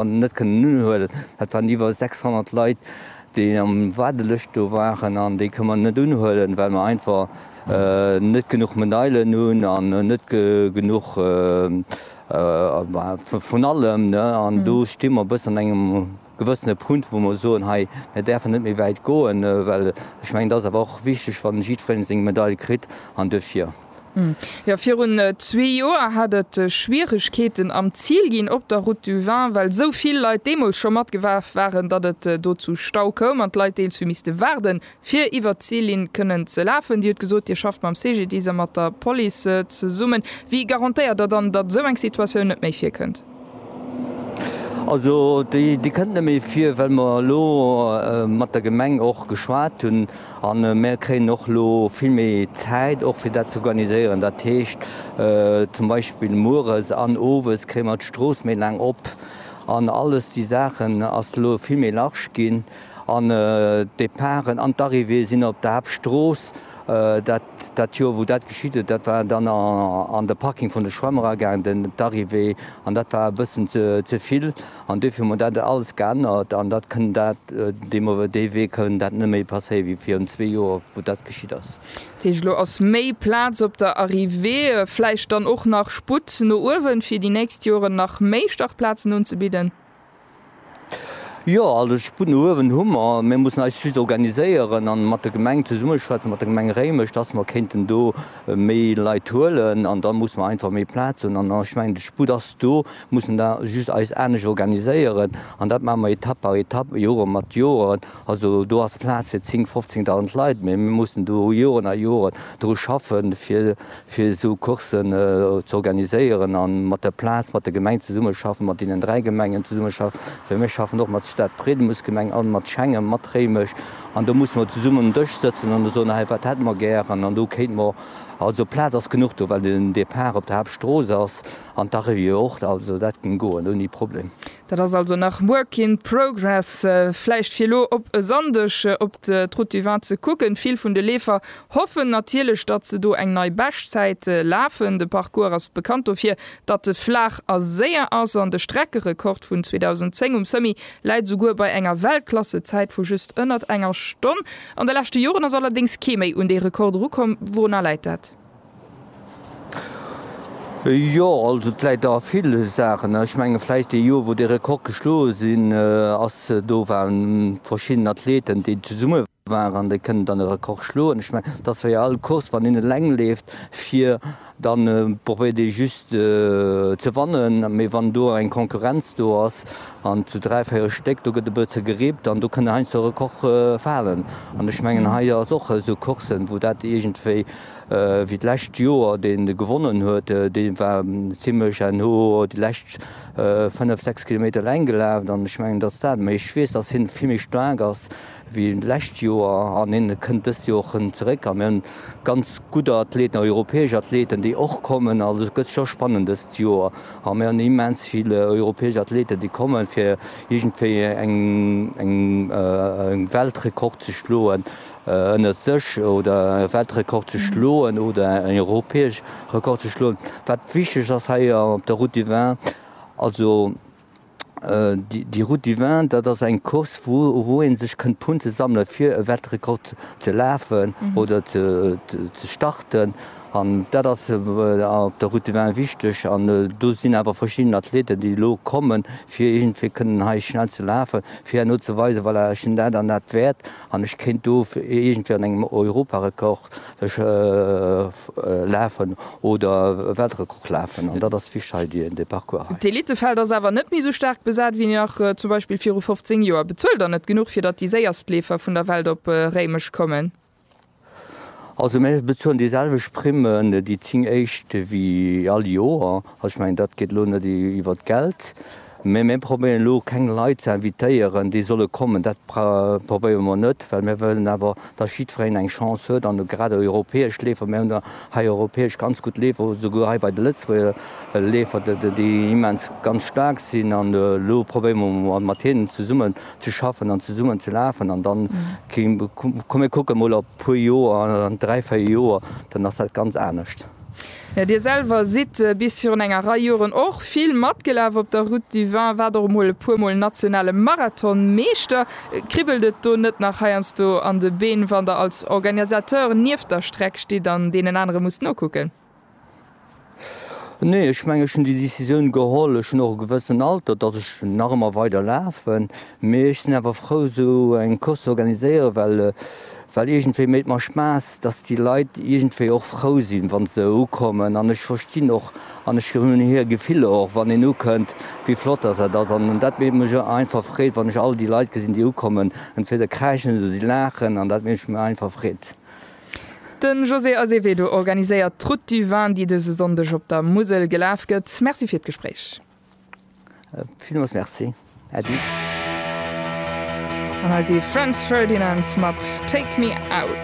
an net kënnen unhuelen. Dat waren iwwer 600 Leit, déi am Waardelëscht do waren an déi kënne mer net unhuelen, well mer einfach net genuch Meneilen hunn an net genuch vun allem. An do sti mer e bëssen an engem gewëssene Punkt, wou mer soen, hei, mir däerfen net méi wäit goen, well ech mengen, et ass awer och wichteg, wann jiddwereen seng Medail kritt an duerfir. Jo, virun zwee Joer hat et Schwieregkeeten am Zil ginn op der Route du Vin, well esou vill Leit deemools scho matgewerf waren, datt et do zu Stau koum an d'Leit deels hu misste waarden, fir iwwert d'Zillinn kënnen ze lafen. Dir hutt gesot, Dir schafft mam CGDIS a mat der Police zesummen. Wéi garantéiert Der dann, datt esou eng Situatioun net méi virkënnt? Also déi kënnt net méi vir, well mer elo mat der Gemeng och geschwat hunn a mer kréien och elo vill méi Zäit och fir dat ze organiséieren. Dat heescht zum Beispill mueres an owes kréie mer d'Strooss méi laang op an alles déi Saachen ass elo vill méi large ginn an d'Departen an d'Arrivée sinn op der Haaptstrooss. Dat Joer wou dat geschitt huet, dat war dann an de Parking vun de Schwämm eragaangen, den d'Arrivée, an dat war e bëssen ze vill an dofir hu mer dat alles geännert an dat kënn dat dee mer dee Wee kënn dat net méi passéie wéi virun zwee Joer wou dat geschitt ass. Dat heescht elo ass méi Plaz op der Arrivée, vläicht dann och nach Sputt no uewen, fir déi nächst Joren nach méi Startplazen unzebidden? Jo, also Sputt no uewen hu mer. Mir mussen eis just organiséieren an mat der Gemeng zesummeschwätzen, mat der Gemeng Réimech, dass mer kéinten do méi Leit huelen. An da mussen mer einfach méi Plaz hunn. An ech mengen, de Sputt ass do. Mir mussen da just eis anescht organiséieren. An dat maache mer Etapp par Etapp, Jore mat Joren. Also do ass Plaz fir 10, 15 Dausend Leit, mee mir mussen do Joren a Joren dru schaffen, fir fir esou Coursen ze organiséieren a mat der Plaz, mat der Gemeng zesummeschaffen, mat deenen dräi Gemengen zesummeschaffen, well mir schaffen och mat Stad Bredemursgemeng an mat Schengen, mat Réimech an do musse mer zesummen um Dësch sëtzen an soen, hei wat hätte mer gären an do kéinte mer, also Plaz ass genuch do, well den Depart op der Haaptstrooss ass an d'Arrivée och, also dat géing goen ouni Problem. Dat ass also nach work in progress. Vläicht fir elo op e Sonndeg op d'Route du Vin ze kucken. Vill vun de Leefer hoffen natierlech, datt se do eng nei Beschtzäit lafen. De Parcours ass bekannt dofir, datt e flaach a séier ass an de Streckerekord vun 2010 um Summi läit esouguer bei enger Weltklassezäit vu just ënnert enger Stonn. An de leschte Joren ass allerdéngs kee méi un dee Rekord erukomm. Wourunner läit dat? Jo, also et läit a ville Saachen. Ech menge vläicht dee Joer, wou dee Rekord geschloe sinn ass, do waren verschidden Athleten, déi zesumme waren an déi kënnen dann e Rekord schloen. Ech menge, et ass wéi all Course, wann een eleng leeft, fir dann probéiert ee just ze wannen, mee wann do eng Konkurrenz do ass an zu dräi, véier Stéck, do gëtt e bësse gerippt an do kënne heiansdo Rekorde falen. An ech mengen hei ass och esou Courssen, wou dat iergendwéi Wéi d'lescht Joer deen gewonnen huet, deen war zimlech en no déi lescht 5, 6 Kilometer eleng gelaf an ech mengen dass dat, mee ech weess dass hien vill méi staark ass wéi d'lescht Joer an hien kënnt dëst Joer och zeréck an mir hunn ganz gutt Athleten, europäesch Athleten déi och kommen. Also et gëtt scho spannend dëst Joer an mir hunn immens vill europäesch Athleten déi kommen fir iergendwéi eng Weltrekord ze schloen. ënnert sech oder e Weltrekord ze schloen oder en europäesch Rekord ze schloen. Wat wichteg ass hei op der Route du Vin, also déi, déi Route du Vin, dat ass eng Course, wou, wou ee sech kënnt Punkte sammele fir e Weltrekord ze lafen oder ze, ze starten. An dat ass op der Route du Vin wichteg. An do sinn awer verschidden Athleten, déi elo kommen, fir iergendwéi kënnen hei schnell ze lafen, fir herno ze weisen, voilà, ech hunn dat an dat wäert. An ech kéint do iergendwéi an engem Europarekord ech lafen oder e Weltrekord lafen. An dat ass wichteg hei, dee Parcours hei. D'Elitefeld ass awer net méi esou staark besat wéi nach zum Beispill viru 15 Joer. Bezuelt Der net genuch, fir datt déi séierst Leefer vun der Welt op Réimech kommen? Also mir bezuelen déi selwecht Primmen, déi zéng éischt, wéi all Joer. Also ech mengen, dat geet elo net iwwer d'Geld. Mä mir probéieren elo keng Leit ze invitéieren, déi solle kommen. Dat probéiere mer net, well mir wëllen awer, datt jiddwereen eng Chance huet an grad déi europäesch Leefer. Mir hunn hei europäesch ganz gutt Leefer, esouguer hei bei de Lëtzebuerger Leefer, déi immens ganz staark sinn. An elo probéiere mer mat hinnen zesummen, ze schaffen an zesummen ze lafen an dann komm mir kucke mol op puer Joer, an dräi, véier Joer, dann ass dat ganz anescht. Jo, Dir selwer sidd bis virun enger Rei Joren och vill matgelaf op der Route du Vin, waart och emol e puer Mol nationale Marathonmeeschter. Kribbelt et do net nach heiansdo an de Been, wann Der als Organisateur nieft der Streck stitt an deenen anere musst nokucken? Nee, ech mengen, ech hunn déi Decisioun geholl. Ech hunn och e gewëssen Alter, datt ech nach ëmmer weider lafen. Mee ech sinn awer frou, esou eng Course ze organiséieren, well, well iergendwéi mécht mer Spaass, datt déi Leit iergendwéi och frou sinn, wa se ukommen. An ech verstinn och an ech hunn hir Gefiller och, wann een ukënnt, wéi flott datt dat ass. An dat mécht mech einfach Freed, wann ech all déi Leit gesinn, déi ukommen. Entweder kräischen se oder si laachen. An dat mécht mech einfach Freed. De José Azevedo organiséiert d'Route du Vin, déi dëse Sonndeg op der Musel gelaf gëtt. Merci fir d'Gespréich. Villmools Merci, Äddi. An hei si Franz Ferdinand mat Take Me Out.